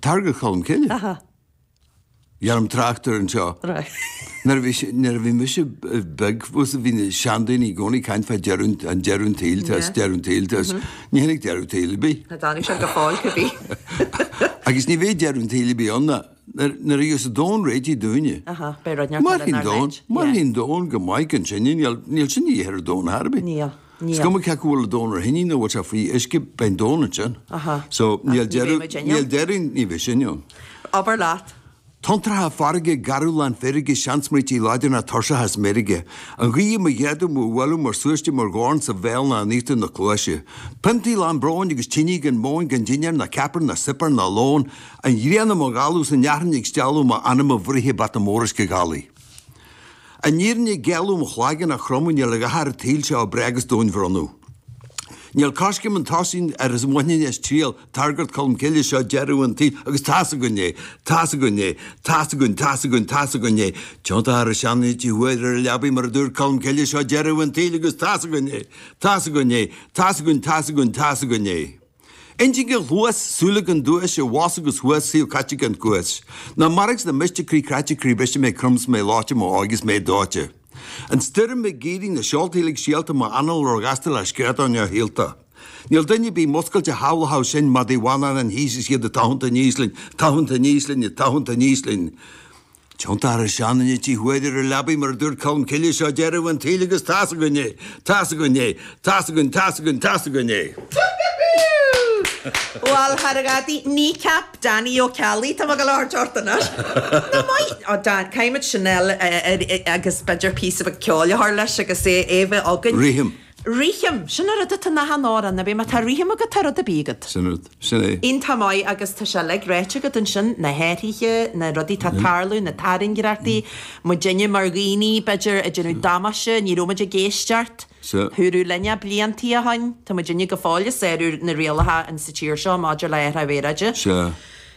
Tairngreacht Cholm Cille. Aha. Bheirim trácht air anseo. Right. Nuair a bhí mise beag is bhí na seandaoine i gcónaí ag caint fá deireadh, an deireadh an tsaoil tá is deireadh an tsaoil tá is ní tháinig deireadh an tsaoil ar bith. Char tháinig sé go fóill cibé. Agus ní bheidh deireadh an tsaoil ar bith ann nuair a gheobhas an domhan réitigh dúinne. Aha, beidh rudaí ar fad inár leith. Mairfidh an domhan, mairfidh an domhan go maith gan sinne, níl sinn de dhíth ar an domhan ar chor ar bith. Níl. Is cuma cé acu bhfuil an domhan ar thine nó bhfuil sé faoi uisce, beidh an domhan ansin. So, níl deireadh, níl deireadh, ní bheidh sinne ann. Abair leat. Tonntracha farraige garbh lán feirge, seansmaointí láidre, tuirseach is meirge. An ghaoth i mo ghéaga, mo bhualadh, mar súiste, mar dhorn sa bhéal ná in íochtar na cluaise. Piontaí lán bróin agus tine gan mhóin, gan dinnéar ná ceapaire ná suipéar ná lón. An ghrian i mo dhalladh, 's an fhearthainn ag stealladh, m'anam i bhfrighe, bata mór uisce ghalaigh. An fhírinne gheal mo chloigeann a chromadh níl a dhath ar an tsaol seo a breith agus domhain bhronnadh. Níl coiscéim chun tosaigh nár smaoinigh is triall tairngreacht Colm Cille seo deireadh an tsaoil agus tá's againn é, tá's againn é, tá's againn, tá's againn, tá's againn é. Tiontóchar an seanduine trí huaire ar a leabaidh mar a dúirt Colm Cille seo deireadh an tsaoil agus tá's againn é, tá's againn é, tá's againn, tá's againn, tá's againn é. Intinn i nguais, súile gan duais, i bhfus agus thuas, saol caite gan chúis. Na mairbh sna mílte croí cráite croí briste mé crom 's mé leáite, m'óige 's mé dóite. An stoirm ag éirí, na seolta uilig stiallta, mo anál ró-ghasta le scread neamhshaolta. Níl duine ar bith múscailte a shábhlóchadh sinn, madaidh bhána na haoise is iad ag tathant aníos linn, ag tathant aníos linn, ag tathant aníos linn. Tiontóchar an seanduine trí huaire ar a leabaidh mar a dúirt Colm Cille, seo deireadh an tsaoil agus tá's againn é! Tá's againn é! Tá's againn, tá's againn, tá's againn é! Bhal, thar gadaí Kneecap, Danny Ó Ceallaigh, tá mé go leor teacht anois. An-mhaith, a Dan, caithfimid sin eile agus b'fhéidir píosa beag ceoil a chur leis agus é bheith againn. Rithim. Rithim, sin an rud atá in achan amhrán ar bith. Má tá rithim agat tá rud ar bith agat. Sin an rud, sin é. Iontach maith agus tá sé uilig ráite agat ansin, na hathruithe, na rudaí atá ag tarlú, na tairngreachtaí, muid inniu mar dhaoine, b'fhéidir, ag déanamh damáiste, ní raibh muid ag éisteacht, húradh linn é bliantaí ó shoin, tá muid inniu go fóill ag sárú na rialacha in sa tír seo maidir le hathruithe aeráide.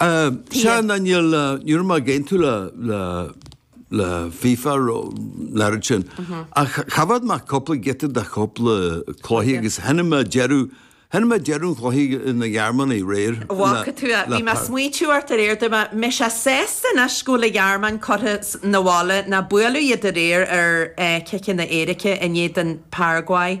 Sea, ná níl, ní raibh mé ag aontú le, le, le FIFA ro, an oiread sin. Ach choimhéad mé cúpla giota de chúpla cluiche agus chonaic mé deireadh, chonaic mé deireadh an chluiche na Gearmáine aréir. A bhfaca tú é, bhí mé a' smaoitiú ort aréir, dúirt mé, beidh sé sásta anois go bhfuil an Ghearmáin curtha 'na bhaile, ná buaileadh iad aréir ar eh, ciceanna éirice in éadan Paraguay.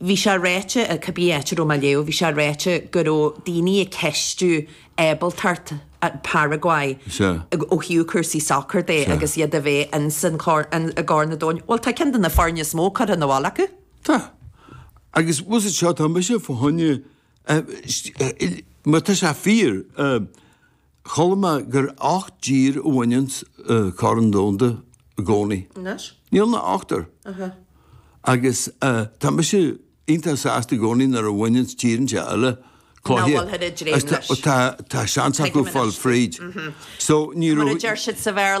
Bhí sé ráite, cá bith áit a raibh mé ag léamh, bhí sé ráite go raibh daoine ag ceistiú ábaltacht Paraguay ó thaobh cúrsaí sacair de agus iad a bheith ins an Chorn Domhanda. Bhuel tá ceann de na foirne is mó curtha abhaile acu. Tá. Agus is é seo atá mise fána choinne, má tá sé fíor, Chuala mé gur ocht dtír a bhaineann an Corn Domhanda i gcónaí. Anois? Níl ach ochtar. Aha. Agus tá mise iontach sásta i gcónaí nuair a bhaineann tíorthaí eile cluiche. Nach mbíonn muid ag dréim leis. Tá seans acu fáil fríd. So ní raibh. Mar a deir siad sa Bhéarla.